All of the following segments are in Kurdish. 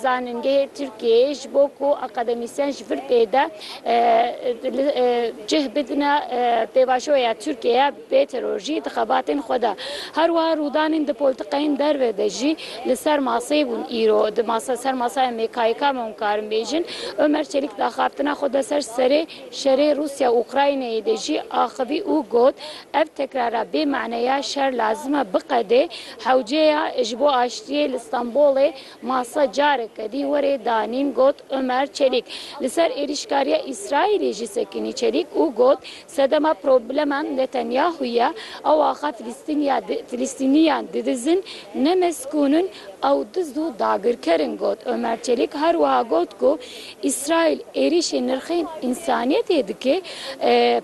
Zanîngehê Tirkiyeyê ji bo ku akademîsyen ji vir pê de cih bidine pêvajoya Tirkiyeyê bê terorjî di xebatên xwe de. Her wiha rûdanên di poltikayên derve de jî li ser maseyê bûn îro di ser masaya MKYK me hûn karin bêjin. Omer Çelîk di axaftina xwe de ser serê şerê Rûsya Ukraynayê de jî axivî û got, Ev tekrara bê mane ya şer lazim e biqede. Hewceya ji bo aştiyê li Stenbolê masa carek kedî werê danîn got Omer Çelîk li ser êrîşkariya Îsraîlê jî sekinî Çelîk û got sedema problema Netanyahu ye ew axa Filistîniyan didizin ne mezkûn in ew diz û dagirker in got Omer Çelîk her wiha got ku Îsraîl êrîşên nirxên însaniyetê dike,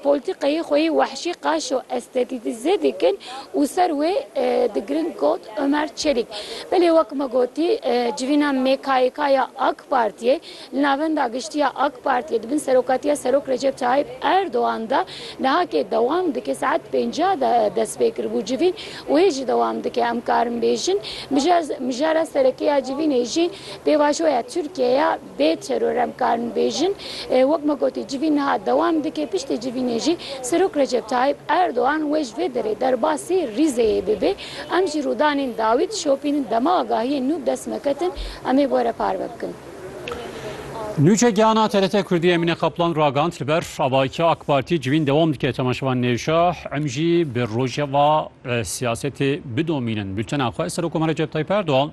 polîtîkayê xwe yê wehşî qaş û estetîtîze dikin û ser wê digirin got Omer Çelîk. Belê wek me gotî civîna MKYK ya AK Partiyê li Navenda Giştî ya AK Partiyê di bin serokatiya Serok Recep Tayyîp Erdogan de nihakê dewam dike. Saet pêncî de dest pê kiribû civîn û hê jî dewam dike. Em karin bêjin mijara serekê ya civînê jî Pêvajoya Tirkiyeyê ya bê teror em karin bêjin, wek me gotî civîn niha dewam dike, piştî civînê jî Serok Recep Tayyîp Erdogan wê ji vê derê derbasî Rîzeyê bibe. Em ji rûdanên dawî dişopînin, dema agahiyên nû bi dest me ketin em ê bi we re parve bikin. Nûçe Gihana TRT Kurdî Emîne Kaplan ragihand li ber avahiyeke AK Partî civîn dewam dike temaşevan nêşa em jî bi rojeva siyasetê bidomînin. Bultena xwe Serokkomar Recep Tayyîp Erdogan.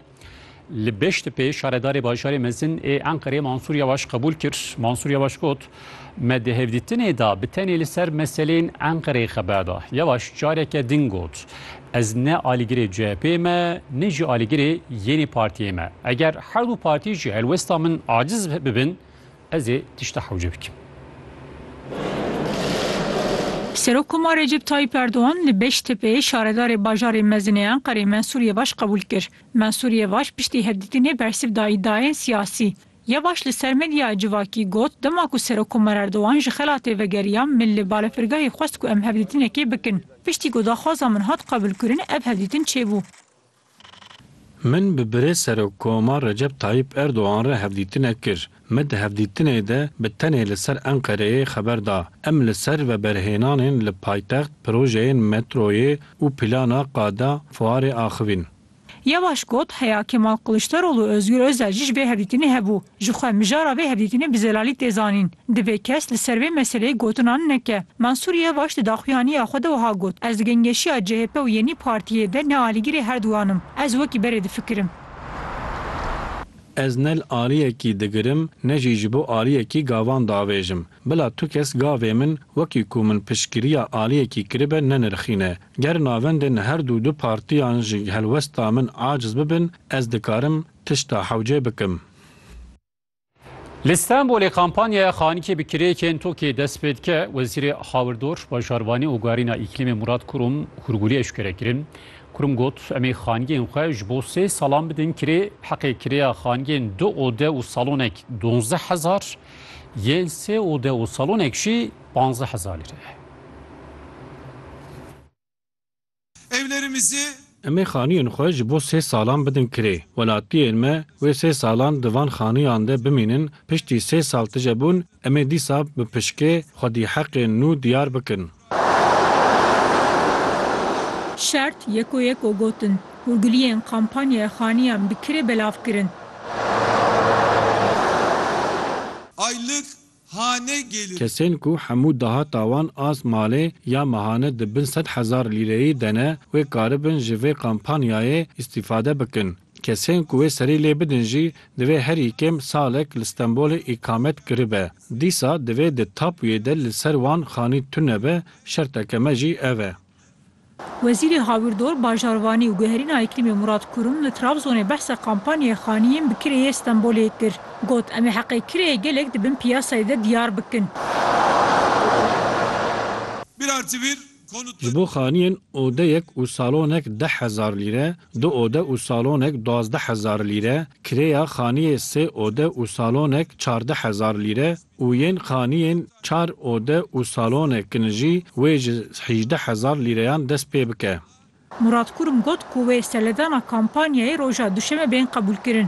Li Beştepê şaredarê bajarê mezin ê Enqerê Mansûr Yawaş qebûl kir. Mansûr Yawaş got, Me di hevdîtinê de bi tenê li ser meseleyên Enqereyê xeber da. Yawaş careke din got, Ez ne alîgirê CHP'ê me ne jî alîgirê yênî partiyê me. Eger her du partî jî helwesta min aciz bibin, Ez ê tişta hewce bikim. Serokkoma Recep Tayyîp Erdogan li Beştepeyê şaredarê bajarê mezin ê Enqerê Mensûr Yevaş qebûl kir. Mensûr Yevaş piştî hevdîtinê bersiv da îdiayên siyasî. Yevaş li ser medyaya civakî got, Dema ku Serokkoma Erdogan ji xelatê vegeriya, min li balefirgehê xwest ku em hevdîtinekê bikin. Piştî ku daxwaza min hat qebûlkirin ev hevdîtin çêbû. Min bi Birêz Serokkoma Recep Tayyîp Erdogan re hevdîtine kir. Me di hevdîtinê de bi tenê li ser Enqereyê xeber da. Em li ser veberhênanên li paytext, projeyên metroyê û plana qada fuarê axivîn. Yevaş got, Heya Kemal Kiliçdaroglu û Ozgur Ozel jî ji vê hevdîtinê hebû. Ji xwe mijara vê hevdîtinê bi zelalî tê zanîn. Divê kes li ser vê meseleyê gotinan neke. Mensûr Yevaş di daxuyaniya xwe de wiha got, Ez di gengeşiya chp û Yenî Partiyê de ne alîgirê her duwan im. Ez wekî berê difikirim. Ez ne li aliyekî digirim ne jî ji bo aliyekî gavan diavêjim. Bila tu kes gavê min wekî ku min piştgiriya aliyekî kiribe nenirxîne. Ger navendên her du du partiyan ji helwesta min aciz bibin, ez dikarim Tişta hewce bikim. Li Stenbolê kampanyaya Xanikê bi kirêkên tokê dest pê dike. Wezîrê Hawirdor, Bajarvanî û Guherîna Îklîmê Murat Kurum hûrgûlî eşkere kirin. Kurum got, Em ê xanigên xwe ji bo sê salan bidin kirê. Heqê kirêya xanigên du ode û salonek duwazdeh hezar, yên sê ode û salonek jî panzdeh hezar lîre ye. Evlerimizi. Em ê xaniyên xwe ji bo sê salan bidin kirê. Welatiyên me wê sê salan di van xaniyan de bimînin, piştî sê sal tije bûn em ê dîsa bi pişkê xwedî heqên nû diyar bikin. Şert yeko yeko gotin. Hûrgiliyên kampanyaya xaniyan bi kirê belav kirin. Aylık hane gelin. Kesên ku hemû dahata wan as malê ya mehane di bin sed hezar lîreyî de ne wê karibin ji vê kampanyayê îstîfade bikin. Kesên ku wê serî lê bidin jî divê herî kêm salek li Stenbolê îkamet kiribe. Dîsa divê di tapuyê de li ser wan xanî tune be, şerteke me jî ev e. Wezîrê Hawirdor, Bajarvanî û Guherîna Îklîmê Murat Kurum li Trabzonê behsa kampanyaya xaniyên bi kireyê Stenbolê kir. Got, Em ê heqê kireyê gelek di bin piyasayê de diyar bikin. Ji bo xaniyên odeyek û salonek deh hezar lîre, du ode û salonek duwazdeh hezar lîre, kirêya xaniyê sê ode û salonek çardeh hezar lîre û yên xaniyên çar ode û salone kin jî wê ji hîjdeh hezar lîreyan dest pê bike. Murat Kurum got ku wê seledana kampanyayê roja duşeme bên qebûlkirin.